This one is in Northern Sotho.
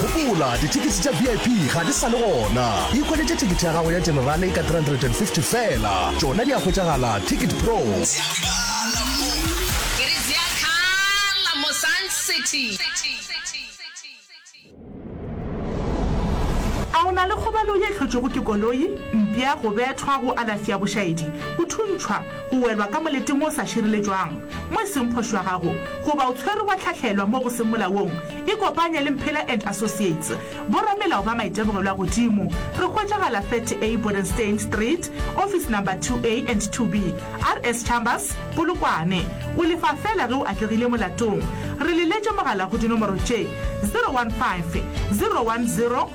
Gopola, dithekisi tša VIP ga di sa le gona. Ikhwetšetše thekete ya gago ya Generale ka 350 feela. Tšona di a hwetšagala Ticket Pro. A o na le kgobalo ye hlotšwego ke koloi, mpša, go bethwa, go alafša, bošaedi, go thuntšhwa, o welwa ka moleteng o sa šireletšwang, mo e seng phošo ya gago, goba o tshwerwe wa hlahlelwa mo go seng molaong, ikopanye le Mphela and Associates, boramelao ba maitemogelwa a godimo. Re hwetšagala 30A Bodenstein Street, office number 2A and 2B, RS Chambers, Polokwane. O lefa feela ge o atlegile molatong. Re leletše mogala go dinomoro tše, 015 010